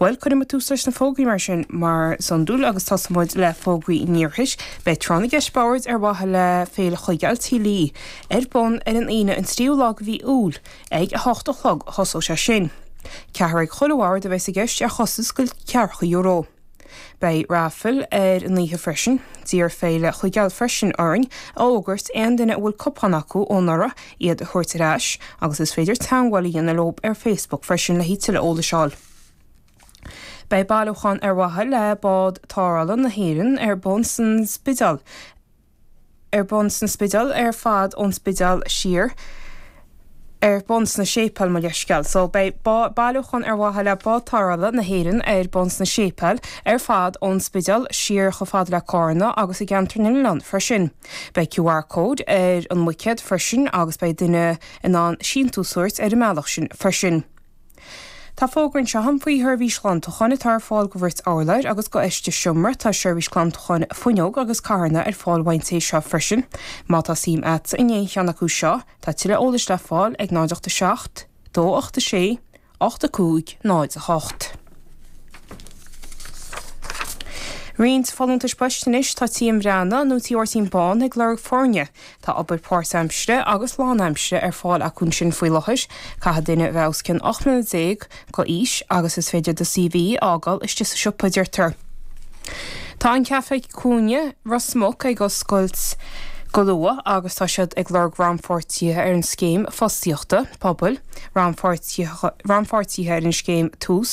Bhuel, cuirfidh muid tús leis na fógraí mar sin mar is iondúil agus tosóidh muid le fógraí an Iarthair. Beidh Tráth na gCeist Boird ar mhaithe le Féile Chuigéil Tí Lee ar bun ar an Aoine an 3ú lá de mhí Iúil ag 8 a chlog a thosóidh sé sin. Ceathrar ag chuile bhord a bheas i gceist ar chostas de ceathracha euro. Beidh raifil ar an oíche freisin. D'iarr Féile Chuigéil freisin orainn a fhógairt aon duine a bhfuil cupán acu ó anuraidh iad a thabhairt ar ais agus is féidir teagmháil a dhéanamh leo ar Facebook freisin le haghaidh tuilleadh eolais a fháil. Beidh bailiúchán ar mhaithe le Bád Tarrthála na hÉireann ar bun san Spidéal ar bun sna Spidéil, ar fad ón Spidéal siar, ar bun sna Séipéil, mo leithscéal. So, beidh bailiúchán ar mhaithe le Bád Tarrthála na hÉireann ar bun sna Séipéil, ar fad ón Spidéal siar chomh fada le Carna agus i gceantar na nOileán freisin. Beidh QR Code ar an mbuicéad freisin agus beidh duine in ann síntiús a thabhairt ar an mbealach sin freisin. Tá fógra anseo agam faoi sheirbhís ghlantacháin atá ar fáil do bhrait urláir agus do fheisteas seomra. Tá seirbhís glantacháin fuinneog agus carranna ar fáil ón té seo freisin. Má tá suim agatsa in aon cheann acu seo, tá tuilleadh eolais le fáil ag 0 87 286 8508. Roinnt folúntais poist anois, Tá Tí M. Breathnach nó Tigh Mháirtín Bán ag lorg foirne Tá obair páirtaimsire agus lánaimsire ar fáil acu ansin faoi láthair. Caithfidh duine a bheith os cionn 18 mbliana d'aois agus is féidir do CV a fhágáil istigh sa siopa, a deirtear. Tá an Caifé Cúinne Ros Muc ag oscailt go luath agus tá siad ag lorg rannpháirtithe ar an Scéim Fostaíochta Pobail, rannpháirtithe ar an scéim Tús.